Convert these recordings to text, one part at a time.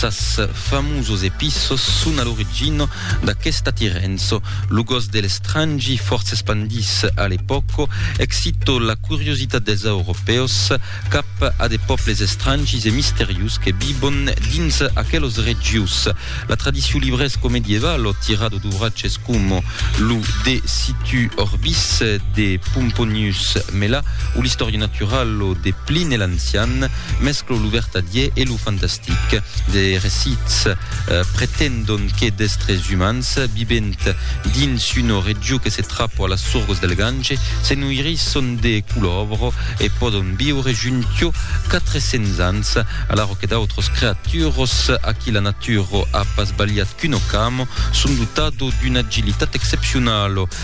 Sas famosos epissos son a l'origina d'aquest atirenço. Lo gos de l'estrangi fòrça espandís a l'epòca excito la curiositat dels Europèus cap a de pòbles estrangis e misterius que vivon dins aquelos regius. La tradicion librèsco medievalo tira de duvratges coma lo De situ orbis de Pomponius Mela o l'Historia naturalo de Pline l'Ancian, Mesclo lo vertadier e lo fantastic. De recits pretendon que d'estres umans, vivent dins una region que se trapo a las sorgos del Gange, se noirisson de culòvro e pòdon viure juntiò 400 ans, alaro que d'autros creaturos, a qui la natura a pas balhat qu'un ocamo, son dotado d'una agilitat excepcionalo.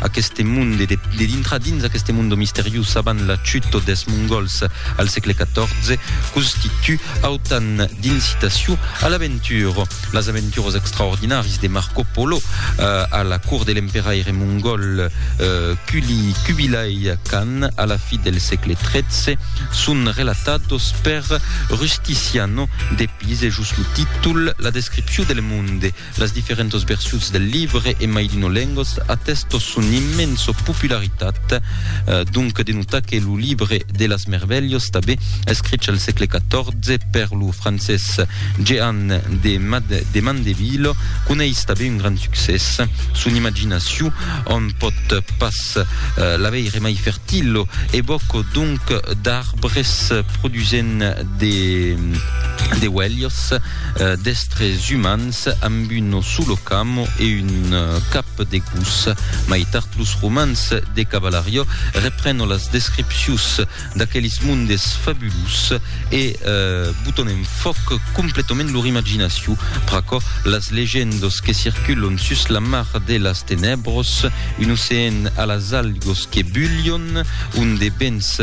Aqueste monde de, de dintrar dins aqueste monde misterius avant la chuto des Mongols al sègle XIV constitu autan d'incitaciu a l'aventura. Las aventuras extraordinaris de Marco Polo eh, a la cour de l'emperaire mongol eh, Kuli Kubilai Khan a la fi del sègle XIII son relatados per Rusticiano de Pise, just lo títol, la descripciu del monde. Las diferentas versions del libre en mai d'una lengas atestan son immensa popularitat, donc denota que lo libre de las mervelhas tabé escrich al sègle XIV per lo francés Jehan de de Mandeville coneis tabé un grand succès. Son imaginacion on pòt pas la veire mai fertila, evòca donc d'arbres produsent de de uelhas, D'estres umans amb un solo cam e un cap de gos. Mai tard los romans de Cavalario reprenon las descripcius d'aqueles mondes fabulus e boton en fòc completament lor imaginacion. Pr'aquò, las legendas que circulon sus la mar de las tenèbras, un ocean a las algas que bulhon, ont de bens